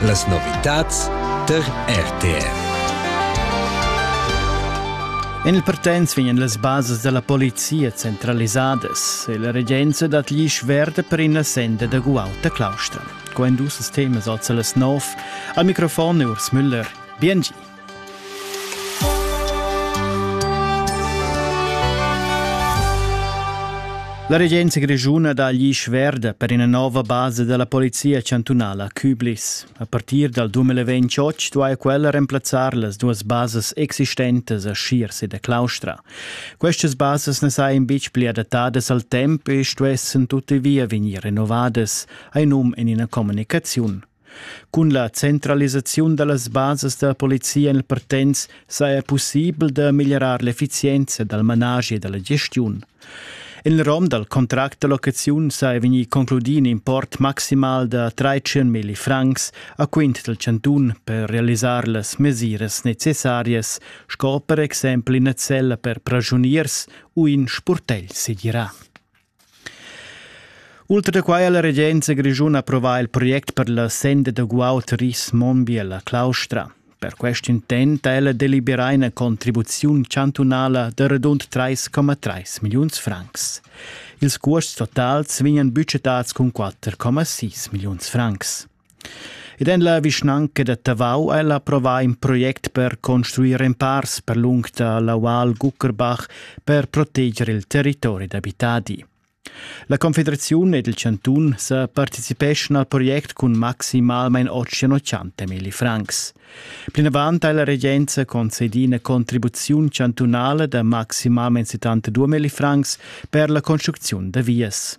Las novitads tar RTR. En il Partenz vegnan las basas da la polizia centralisadas e la regenza dat gli sverde per ina senda da guauta claustra. Quando ses temas oza las 9 al microfon Urs Müller. Bien La regenza grischuna dà gli schverd per ina nova basa della polizia chantunala Küblis. A partir dal 2028 duaja quella remplazzar las duas basas existentes a Schiers ed a Claustra. Questas basas ne sajan bitg pli adattadas al temp e stuessen tuttavia vegnir renovadas, hai num in ina comunicaziun. Cun la centralisaziun dallas basas da polizia en il Partenz saja pussibel da meglierar l'effizienza dal managi e dalla gestiun. En il rom dal contract da locaziun saja vegnì concludì in import maximal da 13 milli francs a quint dal chantun per realisar las mesiras necessarias, sco per exempel ina cella per prasuniers u in spurtegl segirà. Ultra da quai ha la regenza grischuna approvà il project per la senda da guaud Ris Monbiel a Claustra. Per quest intent ha ella deliberà ina contribuziun chantunala da radund 3,3 milliuns francs. Ils cuosts totals vegnan budgetads cun 4,6 milliuns francs. Ed en la vischnanca da Tavau ha el approvà in project per construir empars per lung da l'aual Guckerbach per proteger il territori d'abitadi. La Confederaziun ed il chantun sa participeschan al project cun maximalmain 880 milli francs. Plinavant ha la regenza concedì una contribuzione chantunale da maximalmain 72 milli francs per la construzione da vias.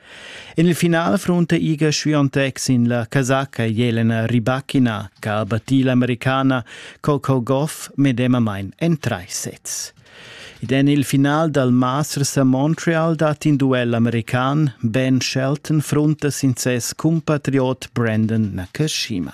En il final frunta Iga Swiatek sin la casacca Jelena Rybakina che ha battì l'americana Coco Goff medemamain en trais sets. Ed en il final dal Masters a Montreal dat in duell american. Ben Shelton frunta sin ses cumpatriot Brandon Nakashima.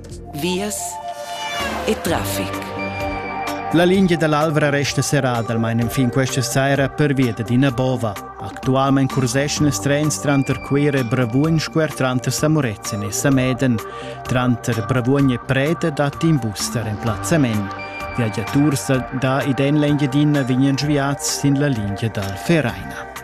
vias e traffic. La lingia dall'Alvra resta serrada almain enfin questa saira pervia da ina bova. Actualmein curseschan els trens tranter Cuira e Bravuogn squer tranter Samuretzen e Sameden. Tranter Bravuogn e Preta dat in bus da remplazzament. Viagiaturs da id en l'Engiadina vegnan sviads sin la lingia dal Vereina.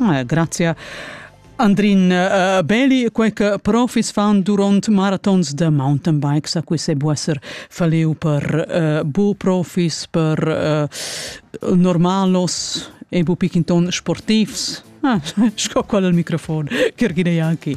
Eh, grazia. Andrin uh, Beli, quei che profis fan durant marathons de mountain bikes, a cui se bu esser faleu per uh, bu profis, per uh, normalos e bu pickinton sportivs. Ah, sco qual al microfon, Kirgine Janki.